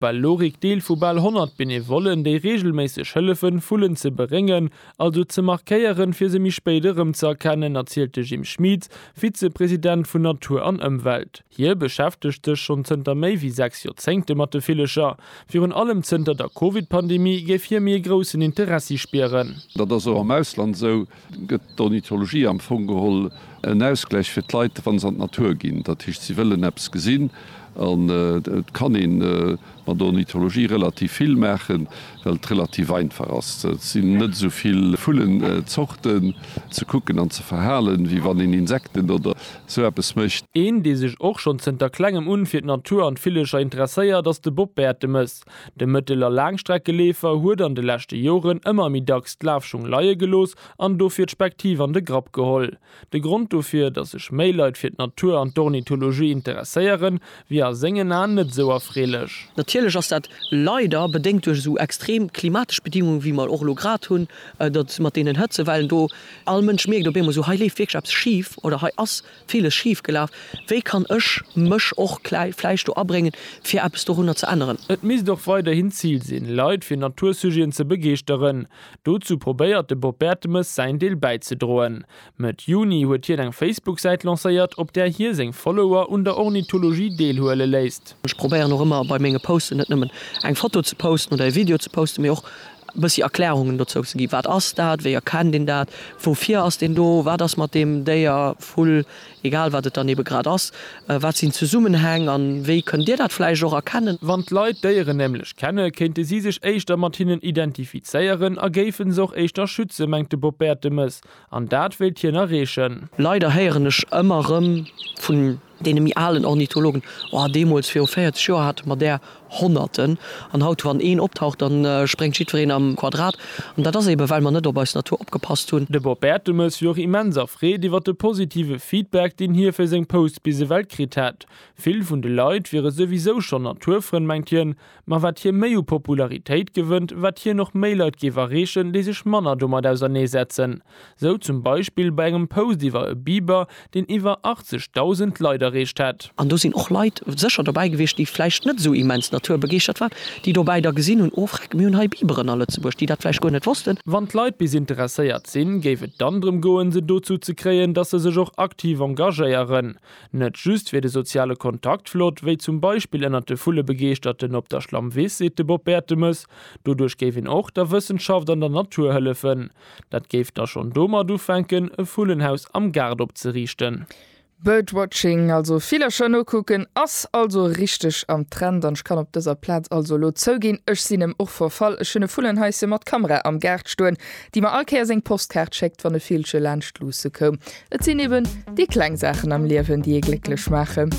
Bal Lorik Deel vu bal 100 Benevollen, déi reegelméisseg hëllefen, Vullen ze beréngen, also ze markéieren, fir se méi spéit erëm ze erkennen, erzielt de Jim Schmieds, Vize-President vun Natur an Ëmwelt. Hie beschäftegt sech schonn zënter méi wéi sechs Joerzéngte mat de Villecher. Virun allem zënter der Covid-Pandemie géif hie méi e groussen Interessi spieren. Dat ass och am Ausland esou. Gëtt d'Ornithologie am Fong geholl en Ausgläich fir d'Leit, wa se an d'Natur ginn? Dat heescht, si wëllen eppes gesinn. An et kann ee mat der Ornithologie relativ vill maachen, well et relativ einfach ass. Et sinn net esou vill Vullenzorten ze kucken an ze verhalen, wéi wann een Insekten oder esou eppes mécht. Een, dee sech och schonn zënter Klengem un fir d'Natur an d'Villecher interesséiert, ass de Bob Bertemes. De Mëttel a Laangstreckeleefer huet an de leschte Joren ëmmer méi dacks d'Lafschung leie gelooss an dofir d'Spektiv an de Grapp geholl. De Grond dofir, dass sech méi Leit fir d'Natur an d'Ornithologie interesséieren, wier a sengen Aen net esou erfreelech. Natierlech ass dat leider bedéngt duerch esou extrem klimatesch Bedingungen, wéi mer och elo grad hunn, dat mat deenen Hëtzewellen do. All Mënsch mierkt op eemol esou, hei leeft wierklech eppes schif oder hei ass Villes schief gelaf. Wéi kann ech mech och klei vläicht do abréngen, fir eppes dorunner ze änneren? Et misst och weiderhin d'Zil sinn, Leit fir Natursujeten ze begeeschteren. Dozou probéiert de Bob Bertemes säin Deel bäizedroen. Mëtt Juni huet hien eng Facebook-Säit lancéiert, op där hie seng Follower un der Ornithologie deelhuele léisst. Ech probéieren och ëmmer bei menge Posten net nëmmen eng Foto ze posten oder e Video ze posten, mee och e bëssi Erklärungen dozou ze ginn, wat ass dat, wéi erkennt een dat, woufir ass deen do, wat ass mat deem Déier, Vull, egal wat et dann ebe grad ass, wat sinn d'Zesummenhäng an wéi kënnt Dir dat vläicht och erkennen? Wann d'Leit d'Déieren nämlech kenne kéinte si sech éischter mat hinnen identifizéieren a géife se och éischter schützen, mengt de Bob Bertemes, an dat wéilt hien erreechen. Leider héieren ech ëmmer erëm vu Deene méi alen Ornithologen, oh, deemools viru 40 Joer hate mer där Honnerten, an haut wann een optaucht, da spréngt jiddwereen am Quadrat. An dat ass eebe well mer net op eis Natur opgepasst hunn. De Bob Bertemes wier och immens erfreet iwwert de positive Feedback, deen hie fir seng Posts bis ewell kritt hätt. Vill vun de Leit wiere souwisou schonn Naturfrënn, mengt hien. Ma wat hie méi u Popularitéit gewënnt, wat hien och méi Leit géif erreechen, déi sech manner domat ausernee setzen. Sou zum Beispill bei engem Post iwwer e Biber, deen iwwer 80.000 Leit erreecht hätt. An do sinn och Leit sécher dobäi gewiescht, déi vläicht net sou immens naturbegeeschtert waren, déi dobäi da gesinn hunn, oh freck, mir hunn hei Biberen a Lëtzebuerg, déi dat vläicht guer net wossten. Wann d'Leit bis interesséiert sinn, géif et dann drëm goen, se dozou ze kréien, datt se sech och aktiv engagéieren. Net just wier de soziale Kontakt flott, wéi zum Beispill ënnert de Vullebegeeschterten op der Schlammwiss, seet de Bob Bertemes. Doduerch géif een och der Wëssenschaft an der Natur hëllefen. Dat géif da schonn domat ufänken, e Vullenhaus am Gaart opzeriichten. Birdwatching, also Villercher nokucken, ass also richteg am Trend. An ech kann op dëser Plaz also elo zouginn, ech sinn em och verfall. Ech hunn e Vullenhaisschen mat Kamera am Gaart stoen, déi mer all Kéier seng Postkaart schéckt, wann e Villche laanscht luusse koum. Et sinn eben déi kleng Saachen am Liewen, déi ee glécklech maachen.